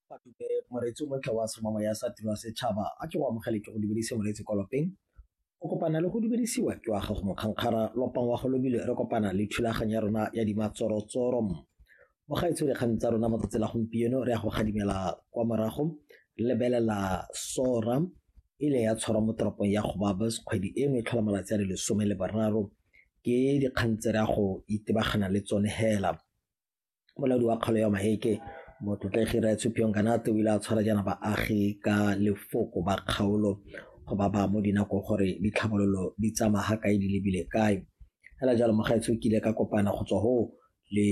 Fatube moreetsi o montle wa semamo ya sa tiro ya setšhaba a ke go amogele ke go dumedise moreetsi kwa lopeng o kopana le go dumedisiwa ke wa gago mokgankgara lopang wa go lobile re kopana le thulaganyo ya rona ya dimatsorotsoro mogaetsho dikgang tsa rona mo tsatsi la gompieno re ya go gadimela kwa morago lebelela sora e le ya tshwarwa mo toropong ya gobabas kgwedi eno e tlhola malatsi a le lesome le bararo ke dikgang tse re ya go itebagana le tsone hela molaodi wa kgalo ya Maheke motlotlegi Raya Tshupiong Kanate o ile a tshwara jaana baagi ka lefoko ba kgaolo go ba ba mo dinako gore ditlhabololo di tsamaya ga kae di lebile kae fela jalo mogaetsho kile ka kopana go tswa ho le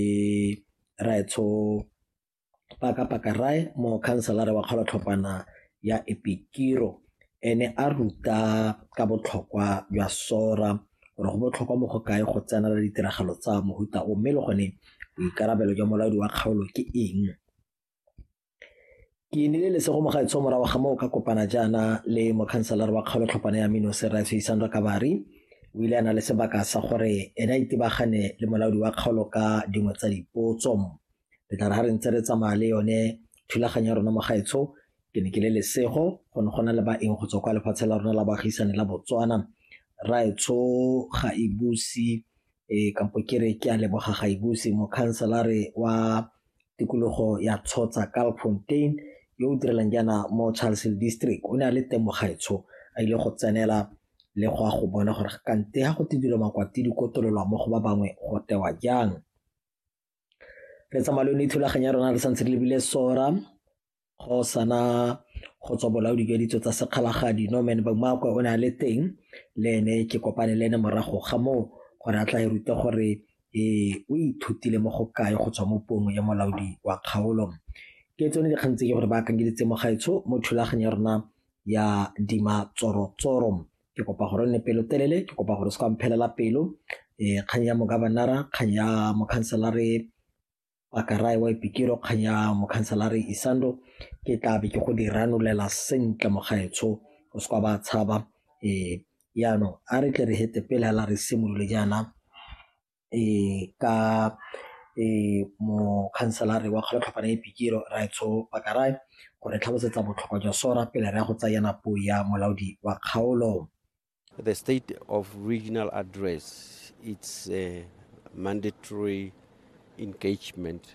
raetsho paka paka rae mo khanselare wa kgolotlhopana ya epikiro ene a ruta ka botlhokwa jwa sora gore go botlhokwa mo go kae go tsenela ditiragalo tsa mohuta o mme le gone boikarabelo jwa molaodi wa kgaolo ke eng ke nile lesego mo gaetsho morago ga moo ka kopana jaana le mokhanselara wa kgaolo tlhopana ya mino serase isandra kabari o ile a na le sebaka sa gore ene a itebagane le molaodi wa kgaolo ka dingwe tsa dipotso re tla re ga re ntse re tsamaya le yone thulaganyo ya rona mo gaetsho Ke ne ke le lesego go ne go na le baeng go tswa kwa lefatshe la rona la baagisane la Botswana. Raetsho ga e buse e eh, kampo ke re ke a leboga ga e buse mokhanselare wa tikologo ya tshotsa Kalfontein yo o direlang jaana mo Charlesville district o ne a le teng mogaetsho a ile go tsenela le go a go bona gore kante ga go te dilo makwati di kotololwa mo go ba bangwe go tewa jang re tsamaya le yone thulaganyo ya rona re santse re lebile sora go sana go tswa bolaodi jwa ditso tsa sekgalagadi no man bamakwe o ne a le teng le ene ke kopane le ene morago ga moo gore a tla e rute gore ee o ithutile mo go kae go tswa mo puong ya molaodi wa kgaolo ke tsone dikgang tse ke gore ba akanyeditse mo gaetsho mo thulaganyo ya rona ya dima tsoro tsoro ke kopa gore o nne pelotelele ke kopa gore o se ka mphelela pelo um kgang ya mogabanara kgang ya mokhanselare pakarae wa ipikiro kgang ya mokhanselare isando ke tla be ke go di ranolela sentle mogaetsho o se ka ba tshaba um yaanong a re tle re hete pele hela re simolole jaana ka mokhanselara wa kgologano e pikiri Rraetsho Pakaray go re tlhalosetsa botlhokwa jwa SORA pele re ya go tsaya yana puo ya molaodi wa kgaolo. The state of regional address it's a mandatory engagement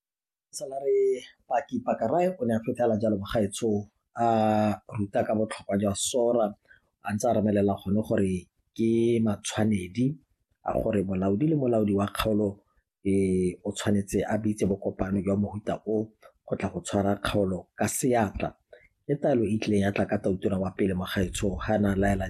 Salary Paki Pakarae o ne a fitlhela jalo bagaetsho a ruta ka botlhokwa jwa sora a ntse a remelela gone gore ke matshwanedi a gore molaodi le molaodi wa kgaolo e o tshwanetse a bitse bokopano jwa mohuta o go tla go tshwara kgaolo ka seatla. Ke taelo e tlileng ya tla ka tautura wa pele Mogaetsho ga na laela